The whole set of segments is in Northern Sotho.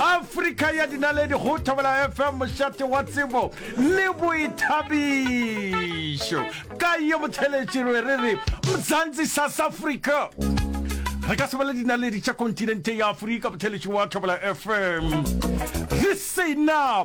afrika ya dinaledi go thobela fm mošate wa tsebo le boithabišo ka ye motheletširwe re re mzantsi south africa re ka sebele dinaledi tša kontinente ya afrika motheletši wa thobela fm re sena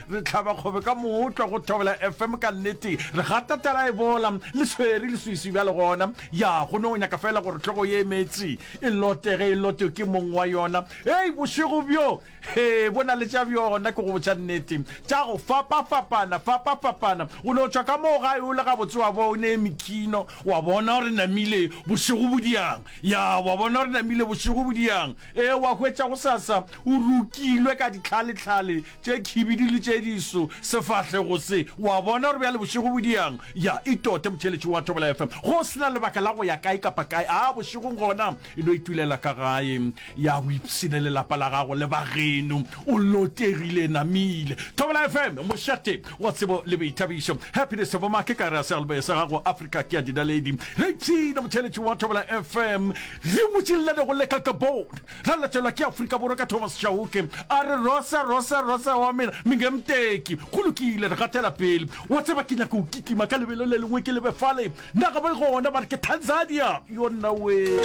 Re hlaba kgobe ka mootla go Thobela FM ka nnete. Re gata tala e bola, le swere leswiswi bjale gona. Ya, go no nyaka feela gore hlogo ye e meetse e lote ge e lotwe ke mong wa yona. Hei, bošego bjo, hee, bo na le tša bjona, ke go botša nnete, tša go fapafapana, fapafapana. O no tšwa ka moo gae o le gabotse wa bo o ne Mikino, wa bona gore namile bošego bo diang. Ya, wa bona gore namile bošego bo diang. Ee, wa hwetša gosasa o rokilwe ka ditlhaletlhale. tše khibidu le tše diso sefahlego se. O a bona gore bjale bošego bo diang? Ya, e tote, motheeletši wa Thobela FM. Go se na lebaka la go ya kae kapa kae. A, bošegong gona, e no itulela ka gae. Ya, o ipshine le lapa la gago le ba geno. O lotegile, namile. Thobela FM, mošate wa tsebo le boithabišo. Happiness of Mma, ke ka re a sealboe sa gago, Afrika ke ya dinaledi. Re ipshine, motheeletši wa Thobela FM. Re motšillane go leka ka bone. Ra latelwa ke Afrika Borwa ka Thomas Chauke a re Rosa, Rosa, Rosa wa mena, Mingemteki. Go lokile, re gatela pele. Wa tseba ke nyaka go kitima ka lebelo le lengwe ke lebe fale. Na ga ba gona ba re ke Tanzania. Yo nna wee.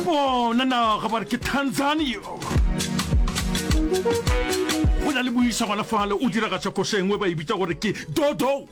Bona naga ba re ke Tanzania. Go na le moisa gona fale o diragatša koša engwe ba e bitsa gore ke Dodo.